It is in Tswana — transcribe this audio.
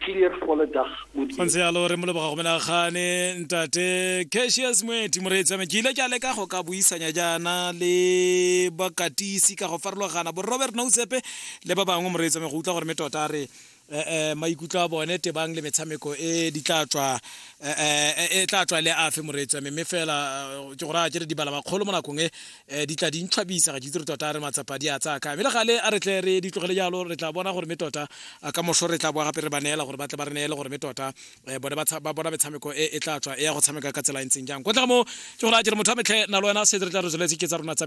clear for the dag go ntse yalo re mo leboga go menagane ntate cashius moeti moreetsame ke ile ke a leka go ka buisanya jaana le bakatisi ka go farologana bo robert noutsepe le ba bangwe moreetsame go utlwa gore me tota re um maikutlo a bone tebang le metshameko e di tla tswa e tla tswa le afe moreetsame mme fela ke gore a ke re dibala makgolo mo nakong e um di tla di ntlhabisa ga ke itse re tota re matsapa di a tsaya kae mme le gale a re tle re di tlogele jalo re tla bona gore me tota ka moso re tla boa gape re ba neela gore ba tle ba re neele gore me tota um bone ba bona metshameko e e tla tswa e ya go tshameka ka tsela e ntseng jang kwa tla mo ke gore a jere motho a metlhe na le wena se re tla re tsweletse ke tsa rona tsa